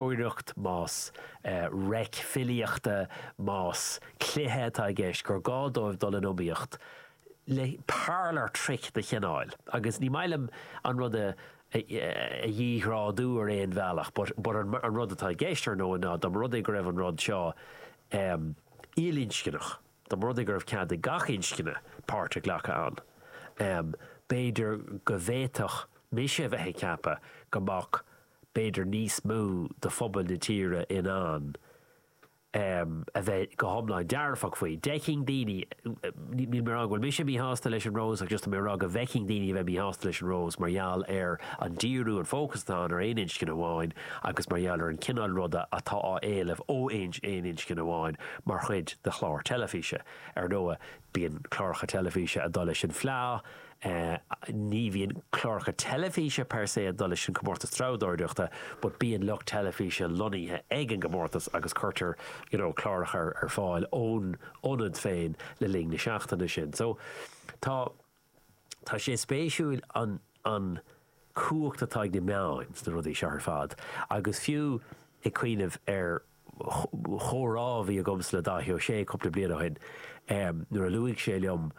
iarracht, más reic filíochta, más cluiche atá i gceist, gur gá dóibh dul in iomaíocht le parlour trick de chineál, agus ní maith liom an rud a dhíghrádú ar aon bhealach but, but an rud atá i gceist, ar ndóigh, ná dá mba rud é go raibh an rud seo il-inscneach, dá mba rud é go raibh cead ag gach inscne páirt a ghlacadh ann, b'fhéidir go bhféadfadh mise a bheith ag ceapadh go mbeadh b'fhéidir níos mó de phobal na tíre in ann a bheith go hiomlán dearfach faoi. D'fheicfinn daoine, níl mé ag rá go bhfuil mise míshásta leis an Rose ach just tá mé ag rá go bhfeicfinn daoine a bheith míshásta leis an Rose mar gheall ar an díriú, an fócas atá ann ar aon inscne amháin agus mar gheall ar an chineál ruda atá á éileamh ó aon inscne amháin mar chuid de chlár teilifíse. Ar ndóigh. Bíonn cláracha teilifíse ag dul leis an Fleadh. Ní bhíonn cláracha teilifíse per se ag dul leis an Comórtas Treabhdóireachta but bíonn lucht teilifíse lonnaithe ag an gcomórtas agus cuirtear you know cláracha ar fáil ón ionad féin le linn na seachtaine sin. So tá. Tá sé spéisiúil an an cumhacht atá ag na meáin sna rudaí seo ar fad agus fiú ag cuimhneamh ar chomhrá a bhí agamsa le Dáithí Ó Sé cúpla bliain ó shin nuair a luaigh sé liom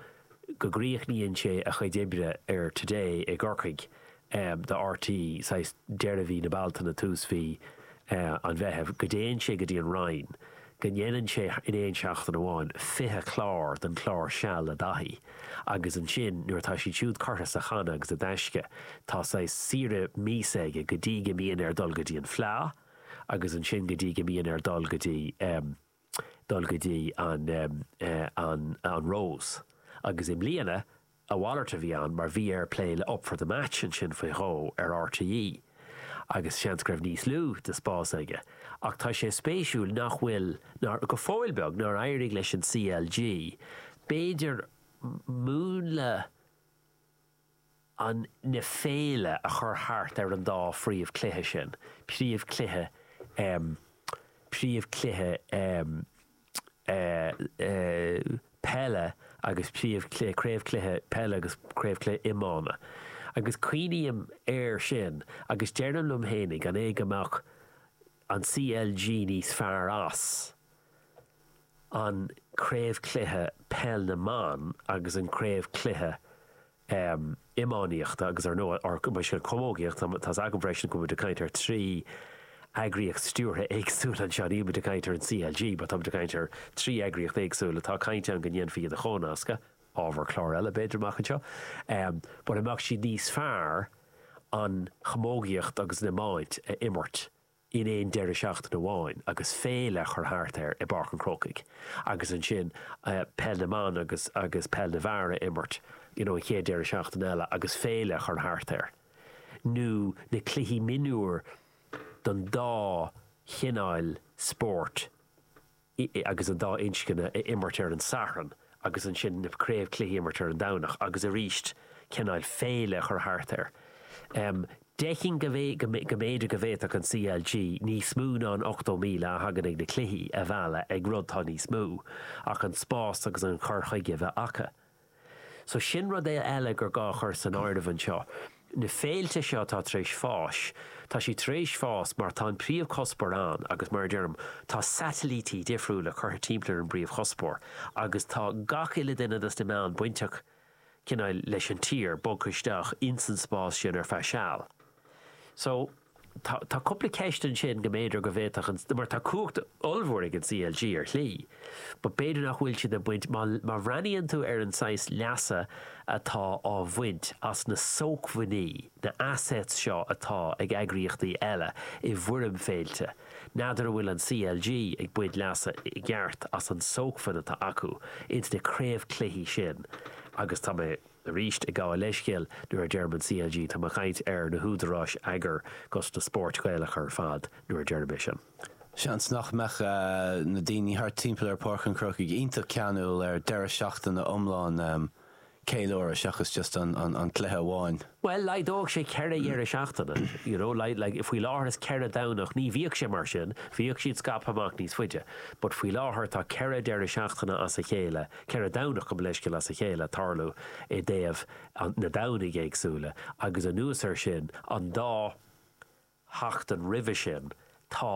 go gcríochnaíonn sé a chuid oibre ar Today i gCorcaigh do RTÉ saghas deireadh mhí na bealtaine tús mhí an mheithimh go dtéann sé go dtí an Rinn go ndéanann sé in aon seachtain amháin 20 clár den clár Seal le Dáithí agus ansin nuair atá siad siúd curtha sa channa agus i dtaisce tá saghas saoire míosa aige go dtí go mbíonn air dul go dtí an fleá agus ansin go dtí go mbíonn air dul go dtí. dul go dtí an Rose agus i mbliana a mhalairt a bhí ann mar bhí air plé le Up for the Match ansin faoi dhó ar RTÉ agus seans go raibh níos lú de spás aige ach tá sé spéisiúil nach bhfuil, nár, go fóill beag, nár éirigh leis an CLG b'fhéidir múnla. an na féile a chur thart ar an dá phríomhchluiche sin, príomh cluiche ehm príomh cluiche ehm eh eh peile agus príomh cluiche craobhchluiche peile agus craobhchluiche iomána agus cuimhním air sin agus deirim liom fhéinig an é go mbeadh an CLG níos fearr as an Craobhchluiche Peil na mBan agus an Craobhchluiche Iománaíochta agus ar ndóigh gabh mo leithscéal Camógaíochta. Tá's agam freisin go bhfuil muid ag caint ar trí eagraíocht stiúrtha éagsúil anseo. Níl muid ag caint ar an CLG, but tá muid ag caint ar trí eagraíocht éagsúil a tá caint ann go ndéanfaí iad a chomhnascadh. ábhar cláir eile b'fhéidir amach anseo but an mbeadh siad níos fearr an chamógaíocht agus an iomáint a imirt in aon deireadh seachtaine amháin agus féile a chur thart air i bPáirc an Chrócaigh agus ansin peil na mban agus agus peil na bhfear a imirt you know an chéad deireadh seachtaine eile agus féile a chur thart air nó na cluichí mionúir don dá chineál spóirt agus an dá inscne a imirt ar an Satharn agus ansin na craobhchluichí a imirt ar an Domhnach agus arís cineál féile a chur thart air. Feicim go go mb'fhéidir go bhféadfadh an CLG níos mó ná an 80,000 a thagann ag na cluichí a mhealladh ag rud atá níos mó ach an spás agus an cur chuige a bheith acu. So sin rud eile gur gá a chur san áireamh anseo. Na féilte seo atá tar éis fás, tá siad tar éis fás mar tá an príomhchuspóir ann agus mar a deirim, tá satailítí difriúla curtha timpeall ar an bpríomhchuspóir agus tá gach uile duine dos na meáin bainteach cineál leis an tír, bogtha isteach ins an spás sin ar feadh seal. So. tá tá cúpla ceist ansin go mb'fhéidir go bhféadfadh an mar tá cumhacht ollmhór ag an CLG ar shlí but b'fhéidir nach bhfuil siad ag baint má má bhreathnaíonn tú ar an saghas leasa atá á bhaint as na sócmhainní na assets seo atá ag eagraíochtaí eile i bhfoirm féilte n'fheadar an bhfuil an CLG ag baint leasa i gceart as an tsócmhainn atá acu ins na craobhchluichí sin agus tá mé Arís ag gabháil leithscéil nuair a deirim an CLG tá mé ag caint ar na húdaráis eagair agus na spóirt Ghaelacha ar fad nuair a deirim é sin. Seans nach mbeadh na daoine thart timpeall ar Páirc an Chrócaigh iontach ceanúil ar deireadh seachtaine iomlán ceiliúradh seachas just an cluiche amháin. Bhuel laghdódh sé ceithre dheireadh seachtaine you know like faoi láthair is ceithre Domhnach ní bhíodh sé mar sin bhíodh siad scaipthe amach níos faide but faoi láthair tá ceithre deireadh seachtaine as a chéile Ceithre Domhnach gabh mo leithscéal as a chéile ag tarlú i dtaobh na nDomhnaí éagsúla agus anuas ar sin an dá sheachtain roimhe sin tá